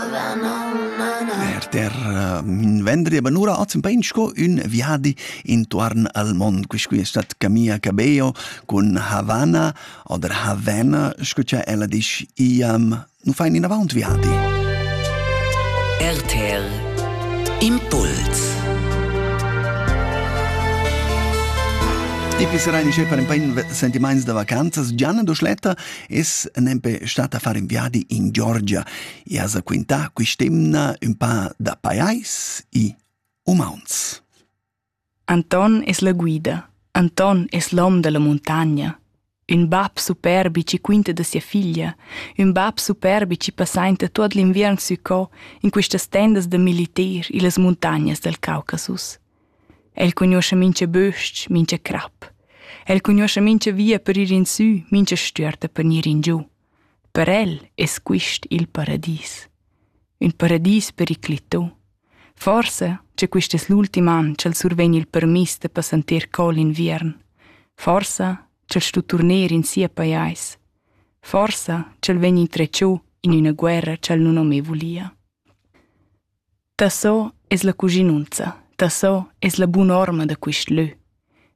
Per terra vendria banura oz in pain sco ün viadi intuorn al mond. Quiscui es stat Camilla Cabello cun Havana oder Havana, sco cha ella disch, iam nu fain inavaunt viadi. RTL Impuls Ipi serai nisce far in pain sentimaints da vacanzas. Gianna Doschletta es nempe stata a fare un viadi in Georgia. e has quintà quist'emna ün pa da pajais e umauns. Anton es la guida. Anton es l'hom da la muntagna. Ün bap superbi chi quinta da sia figlia, ün bap superbi chi passainta tuot l'inviern sü co in quistas tendas da militer illas muntagnas dal Caucasus. El cugnuoscha mincha bös-ch, mincha crap. El cugnuoscha mincha via per ir in sü, mincha stüerta per gnir in giù. Per el es quist il paradis. Ün paradis periclità. Forsa cha quist es l'ultim an cha'l survegn il permiss da passanter cò l'inviern. Forsa ch'el stu turner in sia pajais. Forsa ch'el vegn intretschô in üna guerra ch'el nun ho mê vulia. Tasso es la cuschinunza, tasso es la bun'orma da quist lö.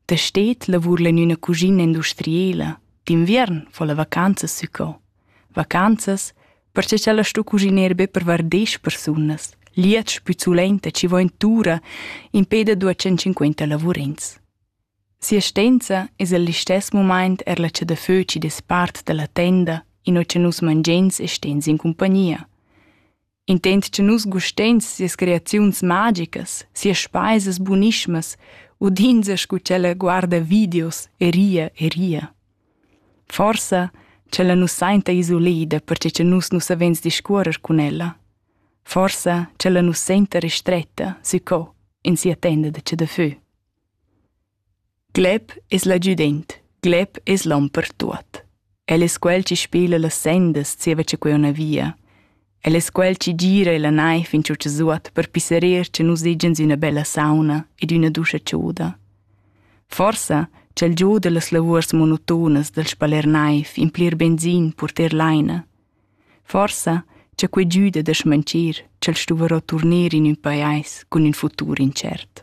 Da stet lavurla in üna cuschina industriela, d'inviern fa la vacanzas sü co. Vacanzas, perche cha la sto cuschiner be per var desch persunas, liets pü sulenta chi vo in tura impè da duos centcinquenta lavurins. Si'astenza es al listess mumaint er la cha da fö chi dess part da la tenda in ho cha nus mangiens e stens in cumpagnia. Intent che nus gusteins sias creaziuns magicas, sias speisas bunismas, udinza scu ch'ella guarda videos e ria e ria. Forsa ch'ella nus sainta isolida perche che nus nu savens discuorer cun ella. Forsa ch'ella nus senta restretta, sü co, in sia tenda de che de fö. Glep es la giudent, glep es l'hom per tuot. El es quel chi spela las sendas zieva cha quei una via. El es quel chi gira e la naiv in tschut zuot per pisserir cha nus egians üna bella sauna ed üna duscha ciuda. Forsa ch'el giuda las lavuors monotonas dal spaler naiv in plir benzin purter laina. Forsa cha quei giuda da schmanchir ch'el stuvarò turnir in ün pajais cun ün futur intschert.